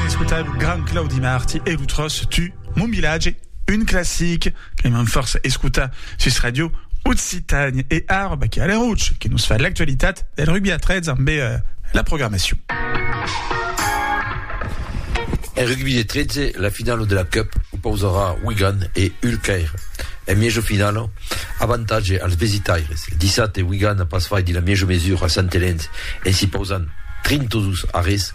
Escotar lo grand Claudi Marti e lo tròç Tu, mon vilatge, un classic que m'an fòrça escotar sus Radio Occitània. E ara va Chiara Roche que nos fa l'actualitat del rugbi a 13 ambe la programacion. En rugbi de 13, la finala de la Cup opausarà Wigan e Hull Caire. En miejo finala, avantatge als vesitaires. Dissabte, Wigan a pas faiti la miejo mesura a Sant Helens en s'i pausant 32 arrés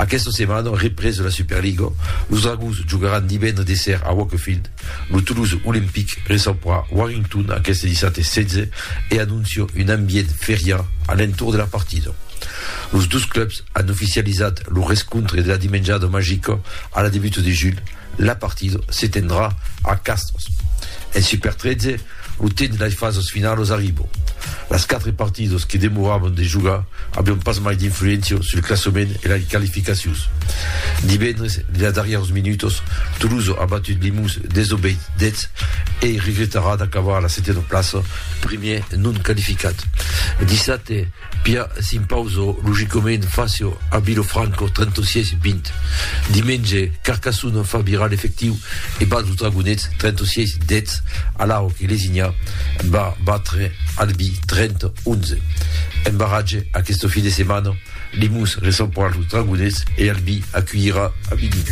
Aquesta setmana, represa la Superliga, los Dragons jogaràn divendres de ser a Wakefield. Lo Toulouse Olympic recebrà Warrington aqueste dissabte 16 e anóncia un ambient feriá a l'entorn de la partida. Los dos clubs an oficializat lo rescontre de la Dimenjada Magica a la debuta de julh, La partida se tendrà a Castors. En Super 13, lo temps de las fasas finalas arriba. Las quatre partidas que demoravan de jogar avián pas mai d'influéncia sul classament e las qualificacions. Divendres, dins las darrièras minutas, Tolosa a batut Limous 10 a 10 e regretarà d'acabar a la setena plaça, primièr non qualificat. Dissabte, Pia s'impauso logicament facio a Vilofranco 36 20 dimenge Carcassona fa virar l'efectiu e bat los Dragonets 36 10 alhau que Lesinha va batre Albi 30 11 en barratge aqueste fin de setmana Limous recebra los Dragonets e Albi aculhirà Avignon.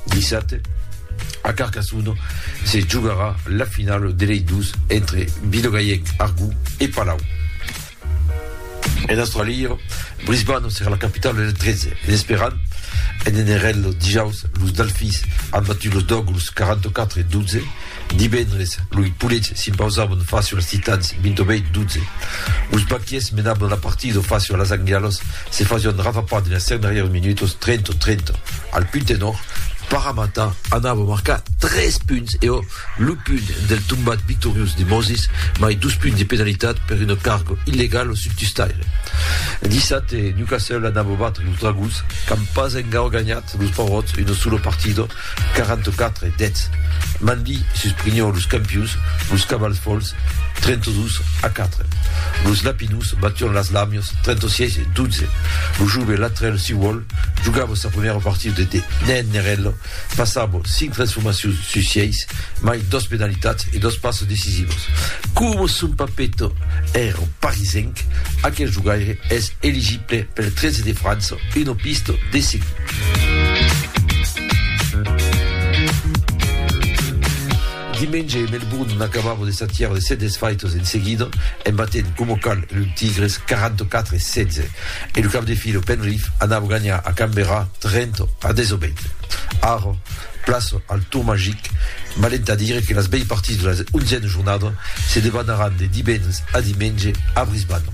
Dissabte, a Carcassona, se jogarà la finala de lei dos entre Vilogaièc, Argó e Palau. En Australia, Brisbane serà la capitala del 13 en esperant en NRL dijaus los Delfins an batut los Dogs 44 12 Divendres, loi polets s'impausavon facio als titans, 28 12. Los baquiers menavon la partida facio las anglialas, se fasion rafapar dins las 5 darrièrs minutos, 30 30. Al punt tenor, Paramata anava marcar 3 punts e ò lo punt del tombat victoriós de Moses, mai 2 punts de penalitat per una carga illegala sul tustaire. Dissabte, Newcastle anava batre los Dragons, qu'an pas encara ganhat los paurots una sola partida, 44 deths, Mandy sus Prignon los campius, los cavals folhs, 32 a 4 los lapinus bation las lamios, 36 12 lo jove latrèl siuòl jogava sa primièra partida de de nen nerèl passava 5 transformacions sus 6 mai dos penalitats e dos passes decisivos coma son papeto èra parisenc aquel jogaire es eligit Pel 13 de França, una pista de seguir. Dimenge, Melbourne n'acabava de s'atiar de 7 desfaitas en seguida, en batent coma cal los Tigres 44 a 16, e lo cap de fila Penrith anava ganhar a Canberra 30 a 18. Ara, Plaça al Tour Magic, valent a dire que las bèi partits de la onzièna jornada se debanaràn de divendres a dimenge a Brisbane.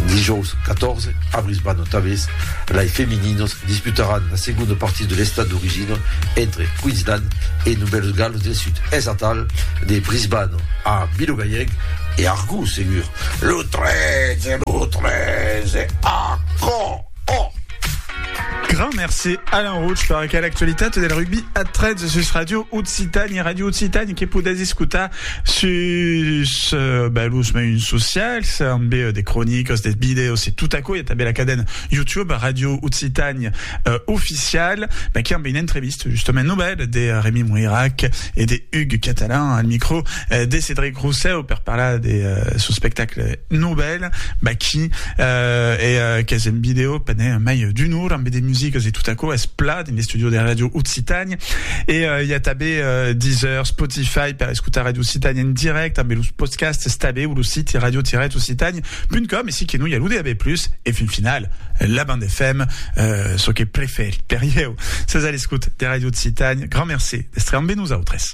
Dijòus 14, a Brisbane tanbés, lai femininas disputaràn la segonda partida de l'estat d'origina entre Queensland e Novèls Galos del Sud. Es atal de Brisbane a Vilogaièg e Argos segur. Lo 13, lo 13, a Caen! Oh! Grand merci Alain Rouch per aquela actualitat del rugbi a 13 sus Radio Occitània, Radio Occitània que podètz escutar sus uh, ben, los meiuns socials, amb uh, de cronicas, de videos e tot aquò. Hi ha també la cadena YouTube Radio Occitània uh, oficial, ben, qui amb une entrevista justement nouvelle de Rémi Moirac et de Hugues Catalan al micro uh, de Cédric Rousseau per parlar de uh, son spectacle Nobel, Baki, e qu'es en video pendent mai d'un or ambe de musicas e tot aquò es plat en l'estúdio de Ràdio Occitània e i a tanbe Deezer, Spotify per escotar Ràdio Occitània en dirècte ambe los podcasts tanbe o lo siti radio-occitània.com e si que non i a lo DAB+, e fin final la band FM, çò que prefèri per ieu. Sètz a l'escot de Ràdio Occitània, grand mercé d'èstre ambe nosautres.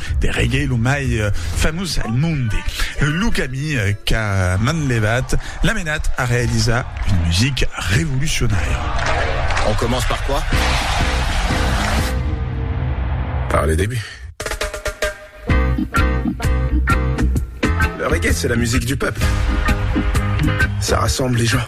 De reggae lo mai famós al monde, lo camí qu'a manlevat l'a menat a realizar una musica revolucionària. On commence par quoi? Par le début. Le reggae c'est la musique du peuple. Ça rassemble les gens.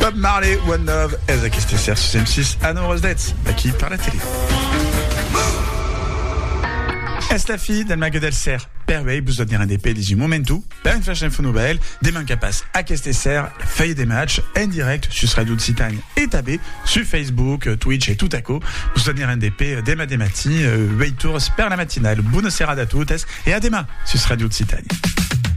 Bob Marley, One Love, ez aquesta ser sus M6 a 9 h 10 d'aquí per la tele. Es la fi del mague del ser, per uei vos doniran de pelis un momentu, per un flash info novèl, de manca pas aquesta ser la fèia de match en direct sus Radio Occitània e tabé sus Facebook, Twitch e tot aquò, vos doniran de pe dema de matí, ueit ors per la matinal. Bona serada a totes e a dema sus Radio Occitània.